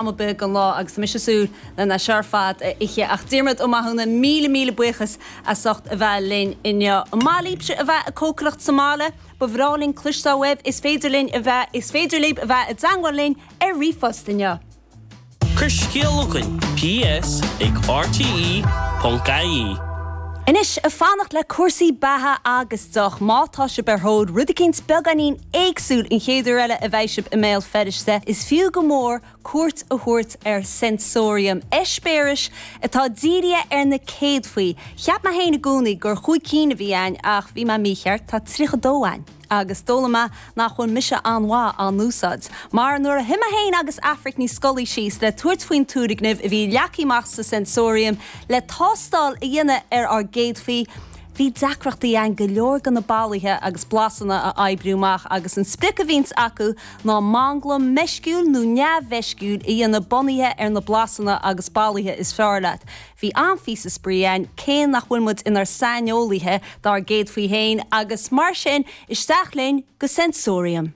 tamall beag den lá agus mise ag súil lena leithéid ar fad a ithe. Ach Diarmaid Ó Mathúna, míle míle buíochas as ucht a bheith linn inniu. An maith libhse a bheith ag cócaireacht sa mbaile? Ba bhreá linn cloisteáil uaibh. Is féidir linn a bheith, is féidir libh a bheith i dteangmháil linn ar ríomhphost inniu. Cuir scéal chugainn, ps ag RTÉ.ie. Anois, ag fanacht le cúrsaí beatha agus deoch. Má tá sibh ar thóir rud éicint beagáinín éagsúil an chéad uair eile a bheidh sibh i mBéal Feirste, is fiú go mór cuairt a thabhairt ar Sensorium, eispéireas atá dírithe ar na céadfaí. Cheap mé féin i gcónaí gur chúig cinn a bhí ann ach bhí mé mícheart, tá 32 ann! Agus d'fhoghlaim mé nach bhfuil mise an-mhaith á n-úsáid. Mar nuair a shuigh mé féin agus Aifric Ní Scolaí síos le tabhairt faoin turgnamh a bhí leagtha amach sa Sensorium le tástáil a dhéanamh ar ár gcéadfaí, Bhí deacrachtaí againn go leor de na bolaithe agus blasanna a oibriú amach agus an sprioc a bhíonns acu ná manglam meisciúil nó neamh-mheisciúil a dhéanamh bunaithe ar na blasanna agus bolaithe is fearr leat. Bhí an-phíosa spraoi ann cé nach bhfuil muid inár saineolaithe dár gcéadfaí féin agus mar sin isteach linn go Sensorium.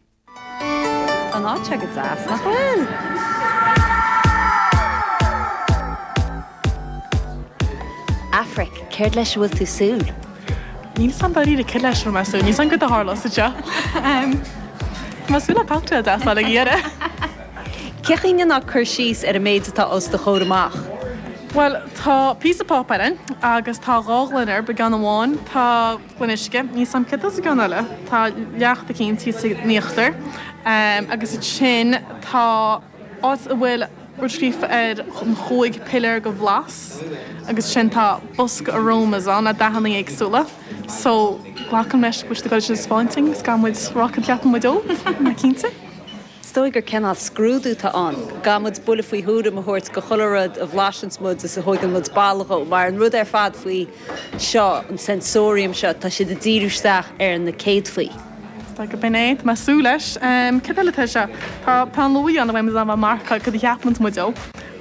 Tá an áit seo go deas, nach bhfuil? Aifric, céard leis a bhfuil tú súil? Níl 'fhios a'm dáiríre céard leis a raibh mé súil, níl 'fhios a'm céard a tharlós anseo. Tá mé súil le cocktail deas le n-ól ag a dheireadh! Cén chaoi a ndéanfá cur síos ar an méid atá os do chomhair amach? Bhuel, tá píosa páipéar a'inn agus tá dhá ghloine orm, beagán amháin. Tá. Gloine uisce, níl 'fhios a'm céard atá sa gceann eile, tá leacht éicint thíos in íochtar agus ansin, tá áit a bhfuil rud scríofa ar an chúig piléar de bhlas agus sin tá bosca aromas ann le dathanna éagsúla, so glacaim leis go bhfuil siad ag gabháil iad a thaispeáint dhúinn, is gabh muid a rá céard a cheapann muid dó, ná cinnte. Is dóigh gur cineál scrúdú tá ann. Gabh muid buille faoi thuairim a thabhairt do chuile rud a bhlaiseanns muid is a thóigeann muid boladh dhó, mar an rud ar fad faoi seo, an sensorium seo, tá siad ag díriú isteach ar na céadfaí. Is dóigh go b'in é, tá mé ag súil leis. Cad eile atá anseo? Tá peann luaidhe ann le go bhféadfaidh muid a mharcáil, cad a cheapanns muid dó?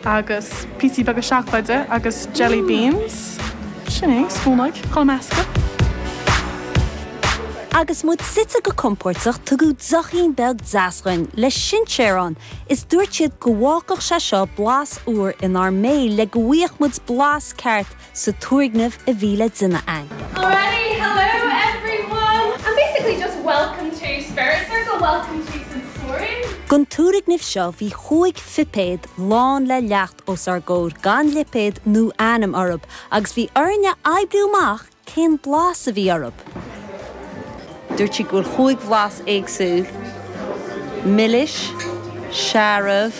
agus píosaí beaga seacláide agus jelly beans, sin é, spúnóig, chun a meascadh. Agus muid suite go compóirteach tugadh deochín beag deas dhúinn le sinséar ann is dúirt siad go bhfágfadh sé seo blas úr inár mbéil le go bhfaigheadh muid blas ceart sa turgnamh a bhí le déanamh ann. Alrighty, hello everyone! And basically just welcome to Spirit Circle, welcome to Sensorium. Don turgnamh seo bhí chúig phipéad lán le leacht os ár gcomhair gan lipéad nó ainm orthu agus bhí orainn a oibriú amach cén blas a bhí orthu. Dúirt siad go bhfuil chúig bhlas éagsúil, milis, searbh,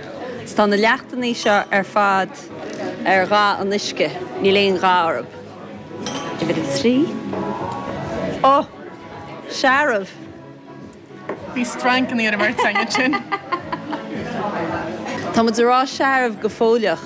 Tá na leachtannaí seo ar fad ar dhath an uisce, níl aon dhath orthu. Uimhir a trí. Ó! Searbh! Bhí strainceannaí ar an mbeirt againn ansin. Tá muid a rá searbh go fóilleach.